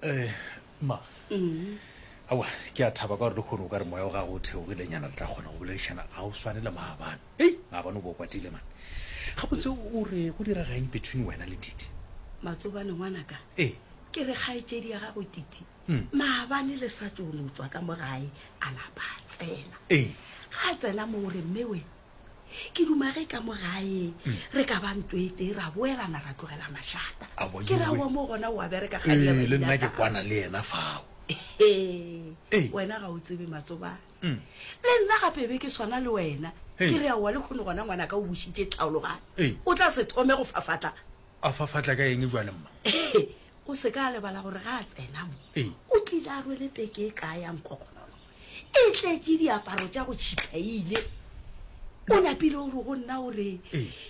Eh, ma mm. awa ke a thaba ka gore le kgore o ka re moya o gago o theogile nyana le tla kgona go boledišana ga o swane le maabane ei maabane o bo o kwatile mane ga botse o re go dira gaeng between wena le tite matsobane ngwanaka ee eh. ke re kgaetsedi ya gago tite hmm. maabane le sa tsono tswa ka mo gae a lapa a tsena ee eh. ga a tsena mo o re mmewe ke duma ge ka mo gae re ka ba nto e tee ra boelana ra tlogela mašata Abo ke ra yeo. wa mo gona wa bereka ga ee le nna ke kwana le yena fao Ee. Ee. wena ga o tsebe matsobane Mm. le nna gape be ke swana le wena Ee. ke re aowa le kgone gona ngwana ka o bušitše Ee. tlhaologane o tla se thome go fafatla a fa fatla ka eng jwale mma o se ka a lebala gore ga a tsenamo Ee. o tlile a rwele peke e kaya nkokonono e tletše diaparo tša go tšhiphaile o napile o re go nna o re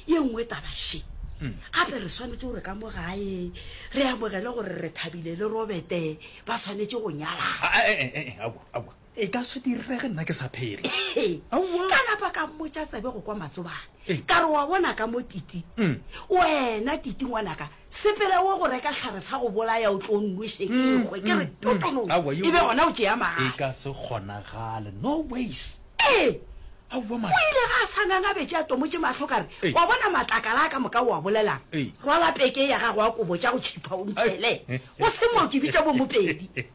ye nngwe tabaše gape re swanetse gore ka mo gae re amogele gore re thabile le robete ba swanetse go nyalaa e ka se direge nna ke sa phele ka napa ka mmotša tsebe go kwa matsobane ka re wa bona ka mo titi wena titi ngwanaka Sepela o go reka hlare sa go bolaya o tlo nnoše ke ekgwe ke re totonono Aowa, yo, e be gona o tšea e mahala. ka se kgonagale, no ways. Ee, Aowa o mara. ile ga a sa ngangabetše a tomotše mahlo ka re, Ee. Wa bona matlakala a ka moka o a bolelang? Ee. Rwala peke ya gago ya kobo tša go tšhipha o nthele. O se mo tšibitša bo Mopedi.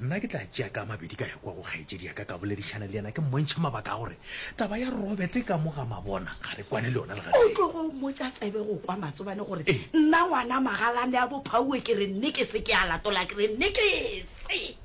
Nna ke tla tšea ka a mabedi ka ya kua go kgaetšedi ya ka ka boledišana le yena ke mmontšha mabaka a gore taba ya Robert e ka mo ga mabona ga re kwane le yona le ga tee. O tlogo mmotša tsebe go kwa matsobane gore nna ngwana magalane a bophauwe ke re nne ke se ke a latola ke re nne ke se.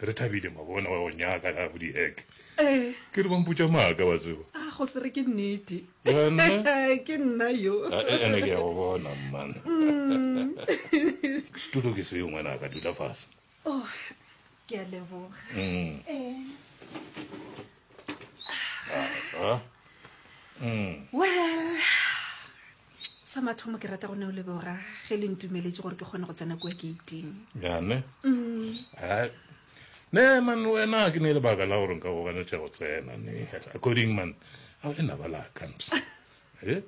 Re thabile mabona wa go nyaka la budi hek. Eh. Ke re bampotša maaka wa tseba. Ah go se re ke nnete. Yona. Ke nna yo. Ah, eh, ene ke ya go bona man. Mm. Studio ke seo ngwana ka dula fase. Oh, ke a leboga. Mm. Eh. Ah. ah. Mm. Well. Sa mathomo ke rata go ne o leboga ge le ntumeletše gore ke kgone go tsena kua geiting. Yane? Ai. Ne man wena ke ne lebaka la gore nka go ganetša go tsena ne. According man, a o le naba la kams. Eh?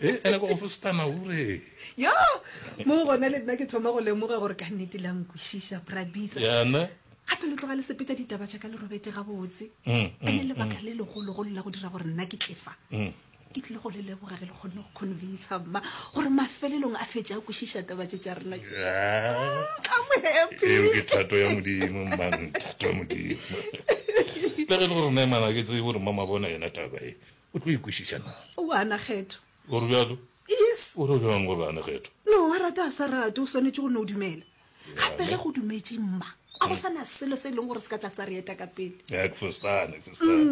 Eh, ene ba o fostana ure. Yo! Mo gona le nna ke thoma go lemoga gore ka nnete la nkwešiša Prabisa. Yane? Gape lo tloga le sepetša ditaba tša ka le robete gabotse. Ene lebaka le legologolo la go dira gore nna ke tlefa. ke tlile go le leboga ge le kgonne go convinca mma gore mafelelong a fetša a kwešiša taba tše tša rena ke thato ya modimo mang thato ya modimo le ge le gore naemana ke tsebe gore mama bona yena taba e o tlo ikwešiša na o ana kgetho gore bjalo yes o re bjang gore ane kgetho no wa rata a sa rate o swanetše go ne o dumela gape ge go dumetše mma a go sana selo se e leng gore se ka tla sa re eta ka pele mm.